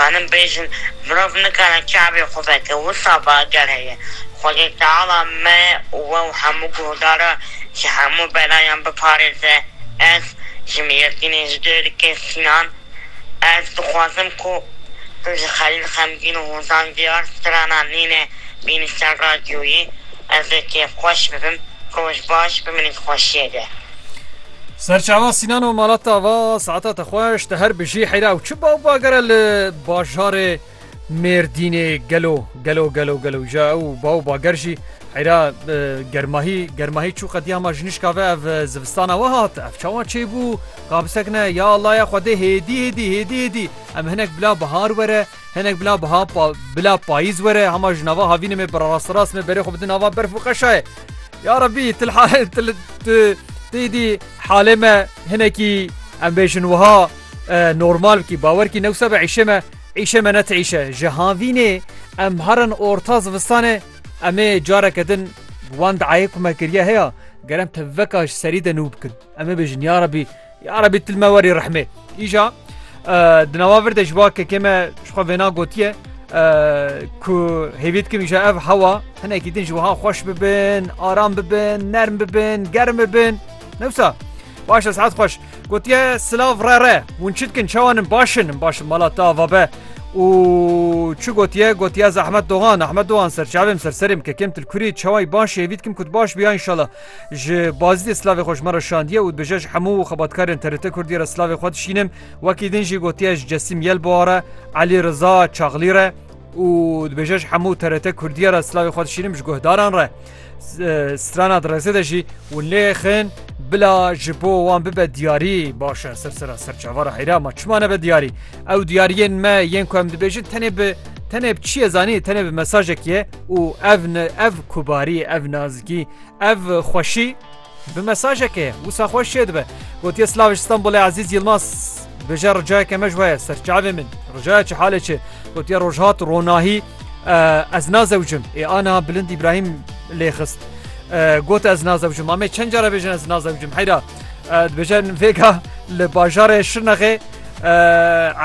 Em bêjin mirov nikare çavê xwe veke, wisa be eger heye Xwedê Teala me û we û hemû guhdara ji hemû belayan biparêze. Ez ji Mîyetînê ji Dêrikê Sînan ez dixwazim ku tu ji Xelîl Xemgîn û Hozan Diyar strana Nîne bînî ser radyoyê. Ez ê kêfxweş bibim. Roj baş, biminît xweşiyê de. Serçava Sînan û Malat a va, Saeta te xweş, te her bijî heyra ew çi ba û bagere li bajarê Mêrdînê gelo gelo gelo gelo ja ew ba û bager jî heyra germahî germahî çû qediya ma ji nişka ve ev zivistana we hat ev çawa çêbû ka bisekine ya Allah ya xwedê hêdî hêdî hêdî hêdî em hinek bila bihar were Hinek bila biha bila payîz were hema ji nava havînê me birasterast me berê xwe bidin nava berf û qeşayê. Ya Rebî til tê dî halê me hinekî em bêjin wiha normal bikî bawer kî newsa be îşê me îşê me net îşe ji havînê em herin orta zivistanê emê careke din wan diayê ku me kiriye heya gerem te veka ji serî de nû bikin. Em ê bêjin ya Rebî ya Rebî til me werî rehmê. Îja di nava vir de ji ba kekê me ji xwe vêna gotiye ku hêvî dikim îja ev hewa hinekî din ji wiha xweş bibin, aram bibin, nerm bibin, germ bibin. Newsa baş e saet xweş. Gotiye silav re re hûn çi dikin çawanin başin in başin mala te ava be. û çi gotiye gotiye zehmet dogan Ahmet dogan serçavêm serserêm kekêm til kurî çaway baş hêvî dikim ku baş biya inşallah. Ji Bazidê silavê xwe ji me re şandiye û dibêje ji hemû xebatkarên TRT Kurdî re silavê xwe dişînim. Wekî din jî gotiye ji Cesim Yelbowa re, Elî Riza Çaxlî re û dibêje ji hemû TRT Kurdî re silavê xwe dişînim ji guhdaran re. Strana di rêzê de jî hûn lê xin bila ji bo wan bibe diyarî baş e. Sirsira ser çavara heyra ma çima nebe diyarî? Ew diyariyên me yên ku em dibêjin tenê bi tenê bi çiyê zanî tenê bi mesajekî ye. û ev ev kubarî ev nazikî ev xweşî bi mesajeke ye wisa xweş şê dibe gotiye Slaviş Stanbulê Ezîz Yilmaz bêje ricayeke me ji weye serçavê min ricaya çi halê çi gotiye rojhat ronahî ez nazewcim ê ana bilind İbrahim lê xist got ez nazewcim amê çend cara bêjin ez nazewcim heyra dibêjin vêga li bajarê şirnexê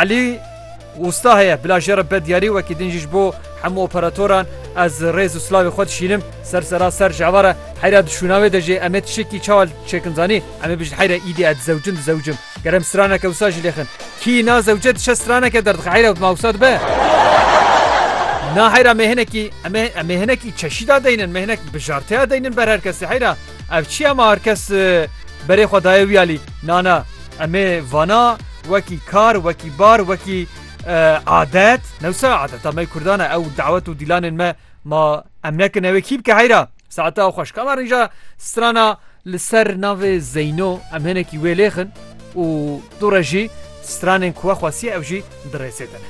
Elî Wista heye bila jê re bedyarî wekî din jî ji bo hemû operatoran ez rêz û silavê xwe dişînim ser sera ser ji eva re heyra di şûna wê de jê em ê tişekî çawa çêkin zanî em ê bijin heyra îdî ez dizewicim dizewicim ger em straneke wisa jî lêxin kî na zewce diçe straneke derdixe heyra ma wisa dibe na heyra me hinekî em ê em ê hinekî çeşî da deynin me hinek bijarteya deynin ber her kesî heyra ev çiya ma her kes berê xwe daye wî alî nana Em ê vana wekî kar, wekî bar, wekî adet. Newsa adeta me Kurdan e ew dawet û dîlanên me ma em nekin ew ê kî bike heyra. Saeta ew xweş kama rîja strana li ser navê Zeyno em hinekî wê lêxin û tu re jî stranên ku we xwestiye ew jî di rêsê de ne.